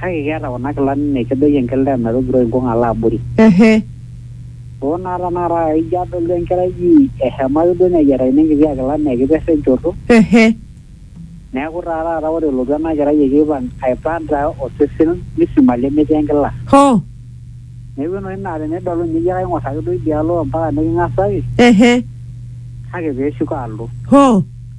Kake keeta kuna kilani naa kedoyio enkilda e Nairobi Road nkung alo abori. Ehe. Hoo naa tenakata aa ijo adolu enkerai ji ehema ake duo neyiatakini enkiti akila naa ekiperra enchoto. Ehe. Neeku taa taata ore elotu ena kerai ekipang aipanta osesen misima lemetii enkila. Hoo. Neeku enoshi naa tenidol ninye iyie kaing'or ake duo idia alo ompaka niking'asaki. Ehe. Kake peeshuko alo. Hoo.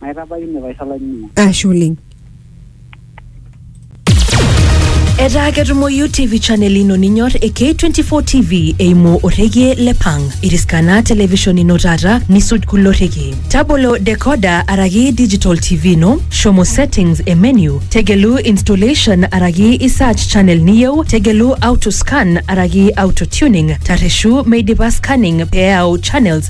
Maitabaiki ine paisho olainining'oni. Ashe oleng. Etaa ketumoyu TV channel ino ninyor e K24 TV eimu orrekie le Pang. Iriskana television ino taata nisuj kulo rrekie. Tabolo decoder araki digital TV ino, shomo settings e menu, tegelu installation araki i search channel niyieu, tegelu auto scan araki auto tuning, tarreshu meidipa scanning pee eyau channels